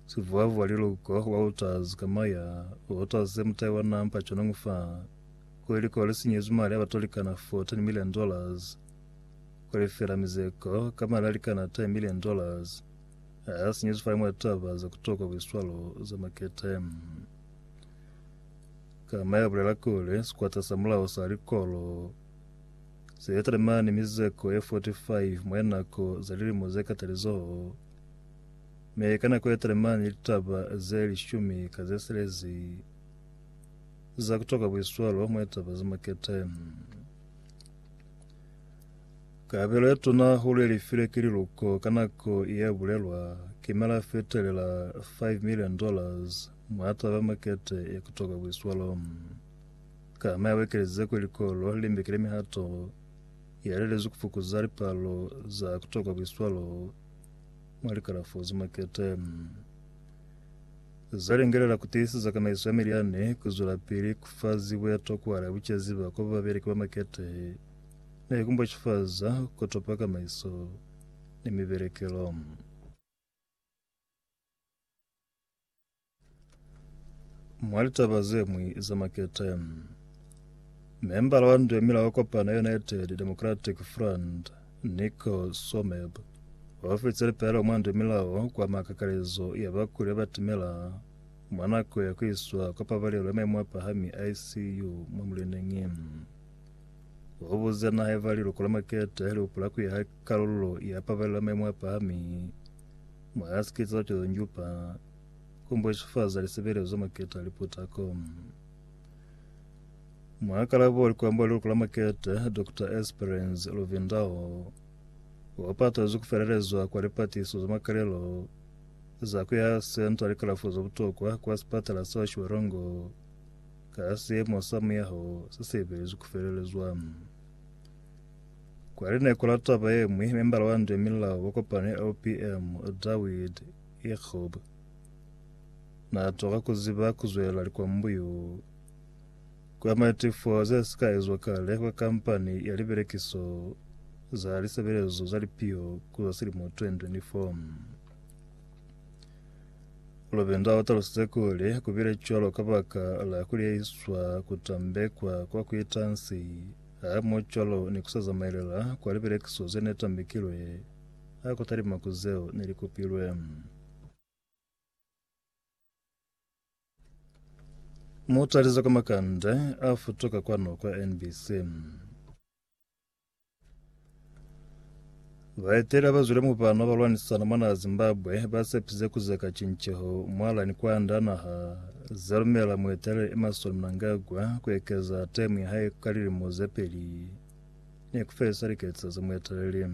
Sivuavua liluko wa otters ka maya, otters ze mutai wa nampa chonong fa, ku liluko le sinyezwi mali a ba tolikana fo 10 million dollars, ku lifela mizeko ka mali a likana 10 million dollars, a a sinyezwi fa imwe taba za kutokwa buiswalo za makete. Ka maya bulela kuli, sikwata sa mulao sa likolo se talimani mizeko ye 45 mwa linako za lilimo ze katalizoho, Mi ka nako yetelemana ni litaba ze lishumi ka ze silezi za kutoka buiswalo mwa litaba ze makete. Kabelo ye tuna hulu ye lifile ki liluko ka nako ye bulelwa ki mela fetelela 5 million dollars mwa taba ya makete ya kutoka buiswalo. Kama ya wekelize kuli likolo li mbekile mihato ya lelezwi kufukuza lipalo za kutoka buiswalo mwa likalafo ze makete za lingelela ku tiiseza kamaiso ya milyani ku zwelapili ku fa zibo ya tokwa la bucezi ba kwa babeleki ba makete ne ku mbwacifaza ku topa kamaiso ni mibelekelo. Mwa litaba ze ñwi za makete, membala wa nduemila wa kopano ya United Democratic Front, Nico Someb, o fitse lipelaelo mwa nduemilao kwa makakalezo ya bakuli ba batimela mwa nako ya ku iswa kwa pabalelo ya maimo a pahami, ICU, mwa muleneñi. O buze naha eba liluko la makete li hupula ku ya ha kalulo ya pabalelo ya maimo a pahami mwa sikete sa Cozonjupa Kumbwesufaza lisebelezo za makete a liputa ko. Mwakalabo wa likwambo la liloko la makete, Dr. Esperance Luvindao, wapatazwi kufelelezwa kwa lipatiso za makalelo za kuya senta likalafo za butokwa kwa sipatala sa Shwerongo ka siemo sa muyaho se seibelezwi kufelelezwa. Kwa lineko la taba yemwi, membala wa Ndwe Milao wa kopano ya LPM, Dawid Yekub na twa ka ku ziba ku zwela likwambuyu kwa matifo ze si ka ezwa kale kwa kampani ya libelekiso za lisebelezo za lipio ku za silimo 2024. Lobenda o talusize kuli ku bile cwalo kabaka la ku liyeiswa ku tambekwa kwa ku ita nsi hamoho cwalo ni ku sa zamaelela kwa libelekiso ze ne tambekilwe ha ku talima ku zeo ne li kupilwe. Mutalizo ka makande a futuka kwanu kwa NBC. Baeteli abazwile mubano balwanisana mwana Zimbabwe basepisize kuzeka cinceho mwalani kwanda naha zalumela mueteleli Emmerson Mnangagwa kuekeza temu yahae ka lilimo zepeli ni ku felisa liketso za mueteleli.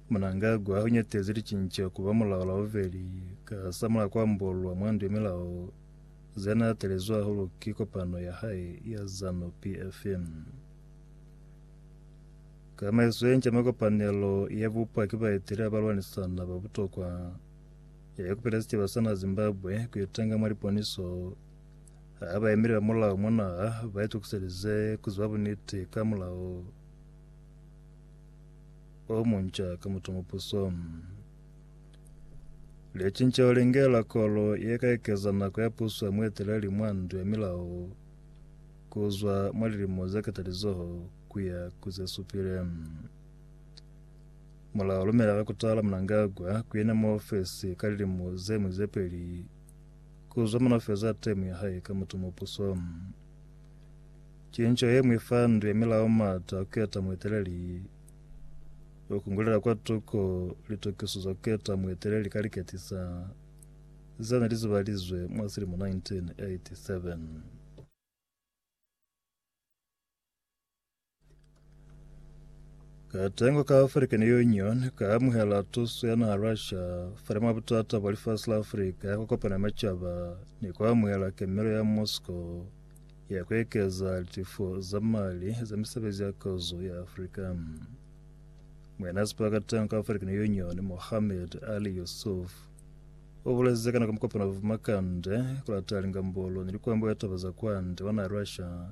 Mnangagwa u nyatezi licinco ku ba mulao la bubeli ka hasamulaho kwa ambolwa mwa ndu ya milao ze na atelezwi hahulu ki kopano ya hae ya Zanu PF. Tsamaiso ye nca mwa kopanelo ye bupwa ki baeteleli ba lwanisana ba butokwa, ya ikupelezi caba sa na Zimbabwe ku itanga mwa liponiso Ha ba yemile ba mulao mwa naha, ba itukiselize ku ziba buniti ka mulao o munca ka mutongopuso. Licinceho li ngela kolo ye ka ekeza nako ya puso ya mueteleli mwa ndu ya milao ku zwa mwa lilimo ze katalizoho ku ya ku ze supile. Mulao lumela ka kutala Mnangagwa ku yena mwa ofesi ka lilimo ze mu ze peli Ku zumana u feza temo ya hae ka mutu mupuso. Cinco ye mwi fa ndu ya milao mata a keta mueteleli. U kungulela kwa tuko litokiso za keta mueteleli ka liketisa ze ne li zibalizwe mwa silimo 1987. Katengo ka African Union ka amuhela tuso ya naha Russia fale mwa butata bwa lifasi la Afrika ya ku kopana macaba ni ku amuhela kemelo ya Moscow ya ku ekeza litifo za mali za misebezi ya kozo ya Afrika. Mwena sipa katengo ka African Union Mohamed Ali Yusuf o buleze ka nako mukopano wa Vumakande ku lata lingambolo ni likwambo ya taba za kwande wa naha Russia